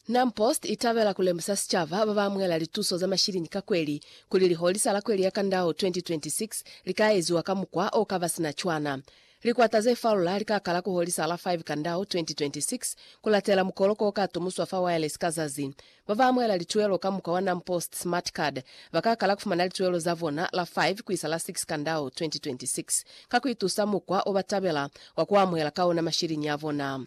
Nam Post i tabela ku lemusa sicaba ba ba amuhela lituso za mashilini ka kweli kuli liholisa la kweli ya Kandao 2026 li ka eziwa ka mukwa o ka ba sina cwana. Likwata ze falula li ka kala ku holisa la 5 Kandao 2026 ku latela mukoloko o ka tumuswa fa Wireless ka zazi Ba ba amuhela lituelo ka mukwa wa NamPost Smart Card ba ka kala ku fumana lituelo za bona la 5 ku isa la 6 Kandau 2026 ka ku itusa mukwa o ba tabela wa ku amuhela ka ona mashiliñi a bona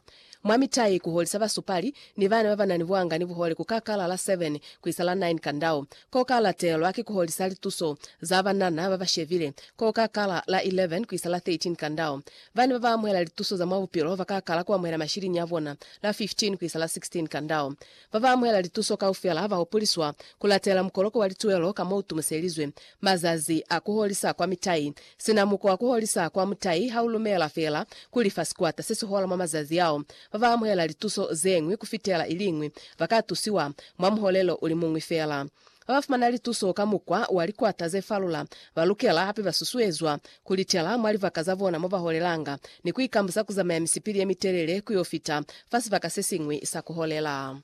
mwa mitai. Ku holisa basupali ni bana ba ba na ni buanga ni buhole ku ka kala la 7 ku isa la 9 Kandau. Ko ka latelwa ki ku holisa lituso za banana ba ba shebile ko ka kala la 11 ku isa la 13 Kandau. Bana ba ba amuhela lituso za mwa bupilo ba ka kala ku amuhela mashiliñi a bona la 15 ku isa la 16 Kandau. Ba ba amuhela lituso kaufela ha ba hopoliswa ku latela mukoloko wa lituelo ka mo u tumuselizwe. Mazazi a ku holisa kwa mitai. Sina muko wa ku holisa kwa mutai ha u lumela fela ku lifa sikwata se si hola mwa mazazi ao, ba ba amuhela lituso ze ñwi ku fitela i li ñwi ba ka tusiwa mwa muholelo u li muñwi fela. Ha ba fumana lituso ka mukwa wa likwata ze falula, ba lukela hape ba susuezwa ku litela mwa libaka za bona mo ba holelanga ni ku ikambusa ku zamaya misipili ye mitelele ku yo fita fa sibaka se siñwi sa ku holela.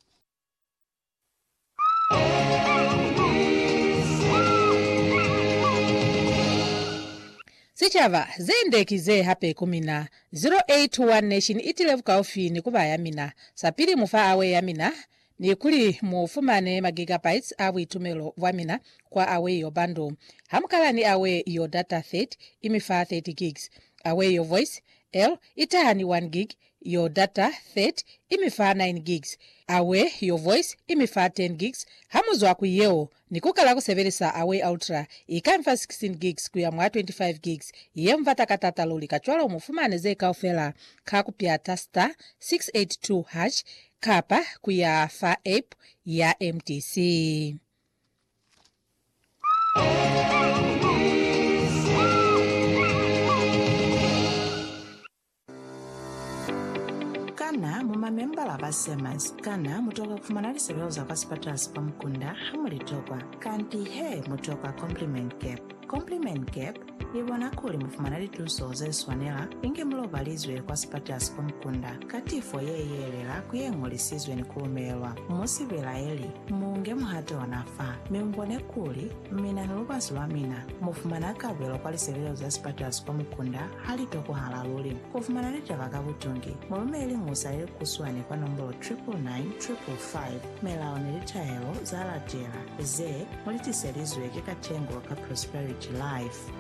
Sicaba, Ze nde ki ze hape ku mina. 0821 Nation i tile bukaufi ni ku ba ya mina. Sapili, Mufa awe ya mina, Ni kuli mu fumane magigabytes a buitumelo bwa mina kwa Aweio Bundle. Ha mu kala ni Aweio Data 30, i mi fa 30 gigs. Aweio Voice, el, i taha ni 1 gig. Yo Data 30 i mi fa 9 gigs. Aweio Voice i mi fa 10 gigs. Ha mu zwa ku yeo, Ni ku kala ku sebelisa Away Ultra, i ka nfa 16 gigs ku ya mwa 25 gigs, ye mu bata ka taata luli, kacwalo mu fumane ze kaufela ka ku pyata star 682 hash kapa ku ya fa app ya MTC. Kana mu mamembala ba SEMAS? Kana mu tokwa ku fumana lisebeo za kwa sipatala sa kwa mukunda ha mu li tokwa? Kanti he, mu tokwa Compliment Gap. Compliment Gap i bona kuli mu fumana lituso ze swanela inge mu lobalizwe kwa sipatala sa kwa mukunda ka tifo ye yelela ku ye ñolisizwe ni ku lumelwa. Mu si belaeli, mu nge muhato ona fa, mi mu bone kuli Mina ni lubasi lwa mina mu fumana kabelo kwa lisebelezo za sipatulaso kwa mukunda ha li tokohala luli. Ku fumana litaba ka butungi, mu lumeleli musa ye kuswani kwa nombolo 99955. Melao ni litaelo za latela ze mu li tiselizwe ki Katengo ka Prosperity Life.